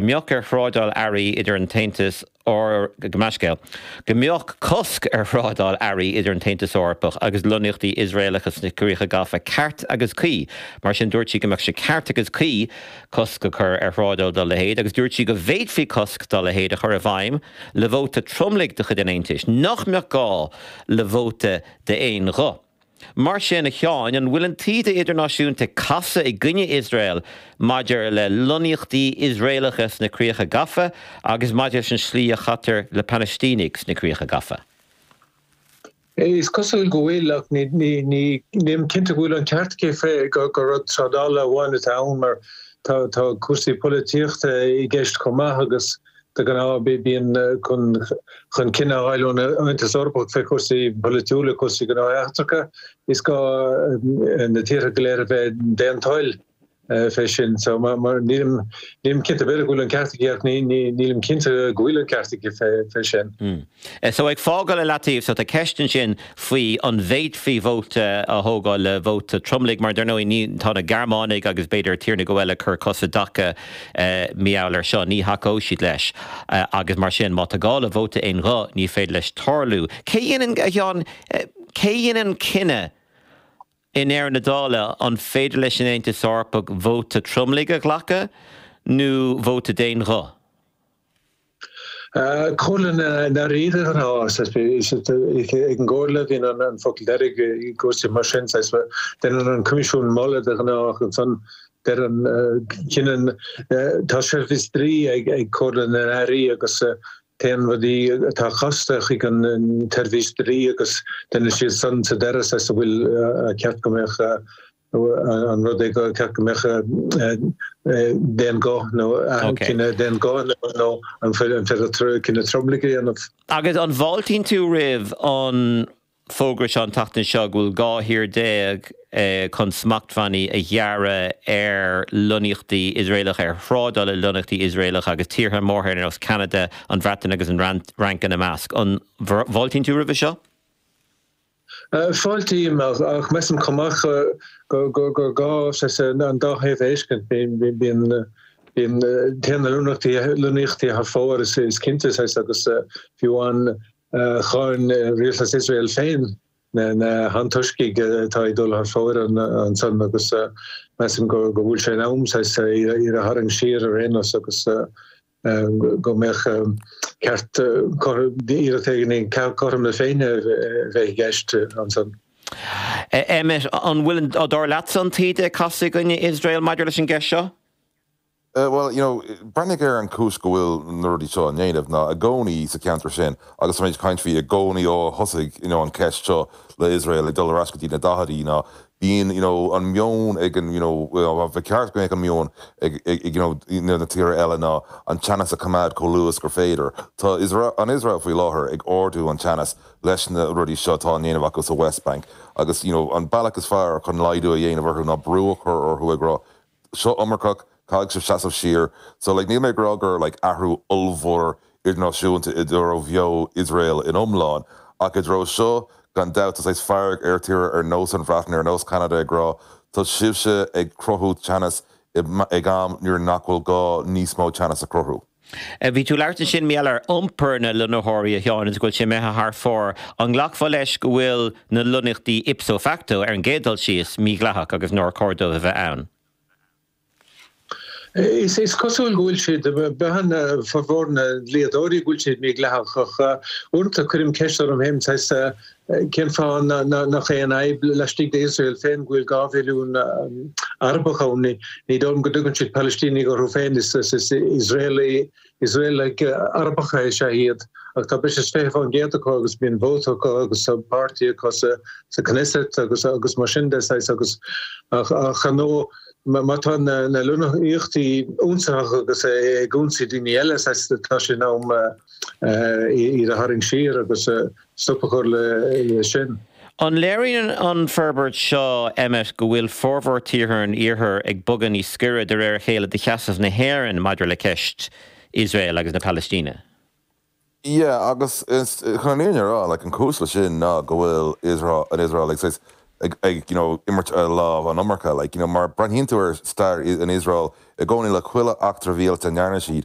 go mbeadh ar thrádáil earraí idir an tAontas Eor, go Meánscéal, go mbeadh cosc ar thrádáil earraí idir an tAontas Eorpach agus lonnaíochtaí Iosraelacha sna Críocha Gafa ceart agus cuí. Mar sin, dúirt sí go mbeadh sé ceart agus cuí cosc a chur ar thrádáil dá leithéid agus dúirt sí go bhféadfaí cosc dá leithéid a chur i bhfeidhm le vóta tromlaigh de chuid an Aontais, nach mbeadh gá le vóta d'aon ghuth. Mar sin, a Sheáin, an bhfuil an taoide idirnáisiúnta ag casadh i gcoinne Iosrael maidir le lonnaíochtaí Iosraelacha sna Críocha Gafa agus maidir leis an slí a chaitear le Palaistínigh sna Críocha Gafa? Is cosúil go bhfuil, ach nílim cinnte go bhfuil an ceart aici gur rud trádála amháin atá ann mar tá cúrsaí polaitíochta i gceist chomh maith agus, De ghnáth, bíonn dul chun cinn á fháil ón Aontas Eorpach fé chúrsaí polaitiúla, cúrsaí gnóthaí eachtracha. Is gá na tíortha go léir a bheith d'aon toil fé sin. So, nílim cinnte, b'fhéidir go bhfuil an ceart aici ach nílim cinnte go bhfuil an ceart aici fé sin. So ag fágáil i leataobh so tá ceist ansin faoin bhféadfaí vóta a thógáil le vóta tromlaigh mar dar ndóigh ní, tá na Gearmánaigh agus b'fhéidir tír nó dhó eile ag cur cos i dtaca i ngeall air seo, ní thacóidh siad leis agus mar sin má tá gá le vóta aon ghuth ní féidir leis tarlú. Cé a dhéanann, a Sheáin, cé a dhéanann an cinneadh i ndeireadh na dála an féidir leis an Aontas Eorpach vóta tromlaigh a ghlacadh nó vóta d'aon ghuth? Comhairle na nAirí de ghnáth, ag an gComhairle a bhíonn an focal deiridh i gcúrsaí mar sin, déanann an Coimisiún moladh de ghnáth ansan deireann, cinneann, tá seirbhís dlí ag Comhairle na nAirí agus téann rudaí atá casta chuig an tseirbhís dlí agus déanann siad san sa deireadh a bhfuil ceart go mbeadh. nó an rud é gur ceart go mbeadh d'aon ghuth nó cinneadh d'aon ghuth nó an féidir cinneadh tromlaigh a dhéanamh. Agus an bhfáiltíonn tú roimh an bhfógra seo, an tseachtain seo, go bhfuil 12 thír chun smachtbhannaí a ghearradh ar lonnaíochtaí Iosraelacha, ar thrádáil le lonnaíochtaí Iosraelacha agus tíortha móra ar nós Ceanada, an Bhreatain agus an Fhrainc ina measc? An bhfáiltíonn tú roimhe seo? Fáiltím, ach measaim chomh maith gur gá an dá thaobh a fheiscint. Téann na lonnaíochtaí thar fóir, is cinnte, agus fiú amháin cháin Rialtas Iosrael féin na hantoiscigh atá ag dul thar fóir ansan agus measaim go bhfuil sé in am iad a tharraingt siar ar aon nós agus go mbeadh ceart éileacht ar chothrom na Féinne a bheith i gceist ansan. Emmet, An bhfuil, dar leatsa, an taoide ag casadh i gcoinne Iosrael maidir leis an gceist seo? Bhuel, you know, breathnaigh ar an chúis go bhfuil na rudaí seo á ndéanamh ná i gcónaí sa cheantar sin agus táimid ag caint faoi i gcónaí ó thosaigh, you know, an cheist seo le Iosrael ag dul ar ais go dtí na daichidí ná bíonn you know an meon ag an you know ba cheart go mbeadh an meon ag ag you know na tíortha eile ná an teannas a choimeád chomh laghad is gur féidir. Tá Iosrael an Iosrael faoi láthair ag ardú an teannas leis na rudaí seo atá á ndéanamh acu sa West Bank agus you know an bealach is fearr chun laghdú a dhéanamh orthu ná brú a chur orthu ag rá seo iomarcach, caithfidh sibh seasamh siar. So like níl mé ag rá gur like athrú ollmhór idirnáisiúnta i dtaobh Iosrael in iomlán, ach i dtaobh seo gan dabht tá saghas fearg ar tíortha ar nós an Bhreatain, ar nós Ceanada ag rá tá sibhse ag cruthú teannas ag am nuair nach bhfuil gá níos mó teannas a chruthú. Bhí tú ag labhairt ansin ar ball ar iompar na lonnaitheoirí, a Sheáin, agus go bhfuil sé imithe thar fóir. An nglacfá leis go bhfuil na lonnaíochtaí ipso facto, ar an gcéad dul síos, mídhleathach agus nár chóir dóibh a bheith ann? Is cosúil go bhfuil siad, deir formhór na ndlíodóirí, go bhfuil siad mídhleathach ach uaireanta cuirim ceist orm fhéin, Cén fáth nach aon fhadhb laistigh d'Iosrael féin go bhfuil dhá mhilliún Arabach ann? Ní dóigh liom go dtugann siad Palaistínigh orthu féin, is Iosraelaigh, Iosraelaigh Arabacha is ea iad, ach tá breis is fiche fán gcéad acu agus bíonn vóta acu agus tá páirtí acu sa Knesset agus agus mar sin de, saghas, agus ach ar ndóigh má tá na na lonnaíochtaí ionsaitheach agus ag ionsaí daoine eile, saghas, tá sé in am iad a tharraingt siar agus stop a chur le sin. An léiríonn an forbairt seo, Emmet, go bhfuil formhór tíortha an Iarthair ag bogadh níos gaire de réir a chéile do sheasamh na hÉireann maidir le ceist Iosrael agus na Palaistíne? Yeah, agus is chun an fhírinne a rá, like, an cúis leis sin ná go bhfuil Iosrael, an Iosrael, like, saghas, ag, ag, you know, imirt a lámh an iomarca, like, you know, má breathnaíonn tú ar stair an Iosrael i gcónaí, le chuile eachtra mhíleata a ndearna siad,